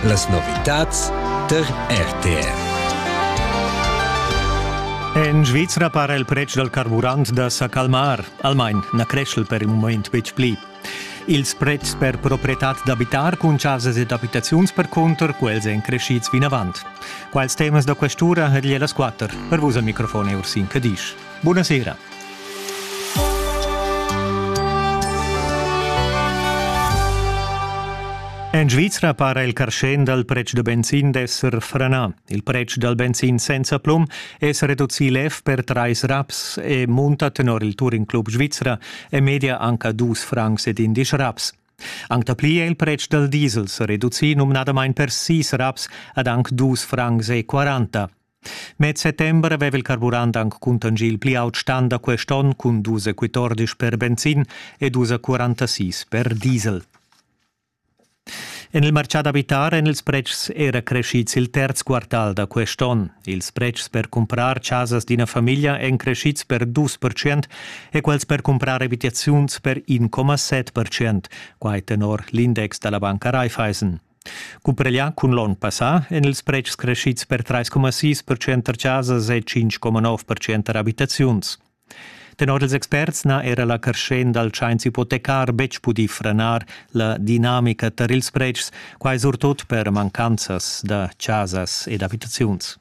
Las novitads tar RTR. En Svizra para il pretsch dal carburant da sa calmar, almain na creschel per il moment betg pli. Ils pretschs per proprietad d'abitar cun chasas ed abitaziuns percunter quels èn crescids vinavant. Quals temas da questura ha el las quatter per vus al microfon Ursin Cadisch. Buonasera. En Svizra para il carschen dal pretsch da benzin d'esser franà. Il pretsch dal benzin senza plum è sa reducì lev per trais raps e munta tenor il Touring Club Svizra e media anca dus francs ed indisch raps. Anc dapli è il pretsch dal diesel sa reducì numnadamain per sis raps ad anc dus francs e quaranta. Med settember aveva il carburant anc cuntanschì il pli aut stan da quest onn cun dus e quattordisch per benzin e dus e quarantasis per diesel. En il martgà d'abitar èn ils pretschs era creschids il terz quartal da quest onn. Ils pretschs per cumprar chasas d'ina famiglia èn creschids per 2% e quels per cumprar abitaziuns per 1,7%, quai tenor l'index da la banca Raiffeisen. Cumpareglià cun l'onn passà èn ils pretschs creschids per 3,6% tar chasas e 5,9% tar abitaziuns. Tenor ils experts n'ha era la creschenda dal tschains ipotecar betg pudì franar la dinamica tar ils pretschs, quai surtut per mancanzas da chasas ed abitaziuns.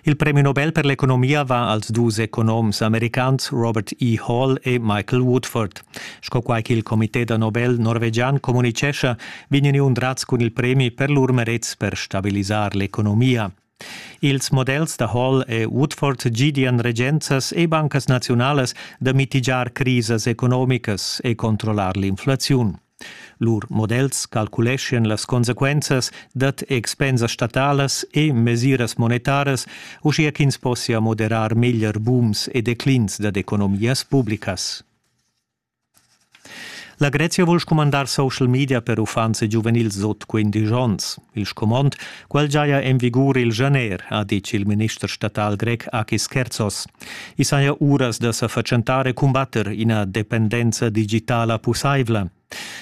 Il premi Nobel per l'economia va als dus economs americans Robert E. Hall e Michael Woodford. Sco quai ch'il comité da Nobel norvegian communitgescha, vegnan undrats cun il premi per lur merets per stabilisar l'economia. Ils models da Hall e Woodford gidian regenzas e bancas naziunalas da mitigiar crisas economicas e controllar l'inflaziun. Lur models calculeschan las consequenzas dad expensas statalas e mesiras monetaras, uschia ch'ins possia moderar meglier bums e declins dad economias publicas. La Grezia vul scumandar social media per uffants e giuvenils sut 15 onns. Il scumond, quel giaja en vigur il janer, ha ditg il minister statal grec Achis Kerzos. I saja uras da sa fatschentar e cumbatter ina dependenza digitala pussaivla.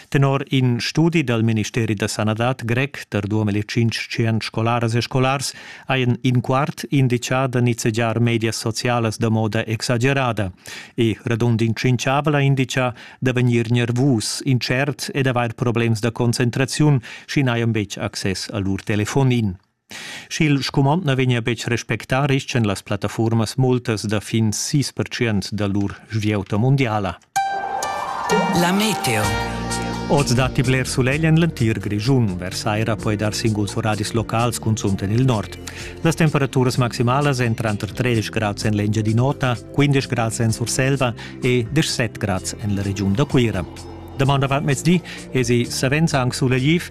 Tenor in studi dal Ministeri da sanadad grec per 2500 scolaras e scolars hajan in quart indicà da nizzegiar medias socialas da moda exagerada e radund in tschinchavel ha indicà da vegnir nervus, intschert ed avair problems da concentraziun, sch'i n'hajan betg access a lur telefonin. Sch'il scumond na vegnia betg respectà, rischan las plattafurmas multas da fin 6% da lur svieuta mundiala. La meteo. Oz datti bler sulegl en l'entir Grischun. Versaira poi dar singuls oradis locals cunzunt en il nord. Las temperaturas maximalas èn tranter 13 grads en l'Engiadin'Ota, 15 grads en Surselva e 17 grads en la regiun da Cuira. Damanda avant mezdi esi savens anc sulegl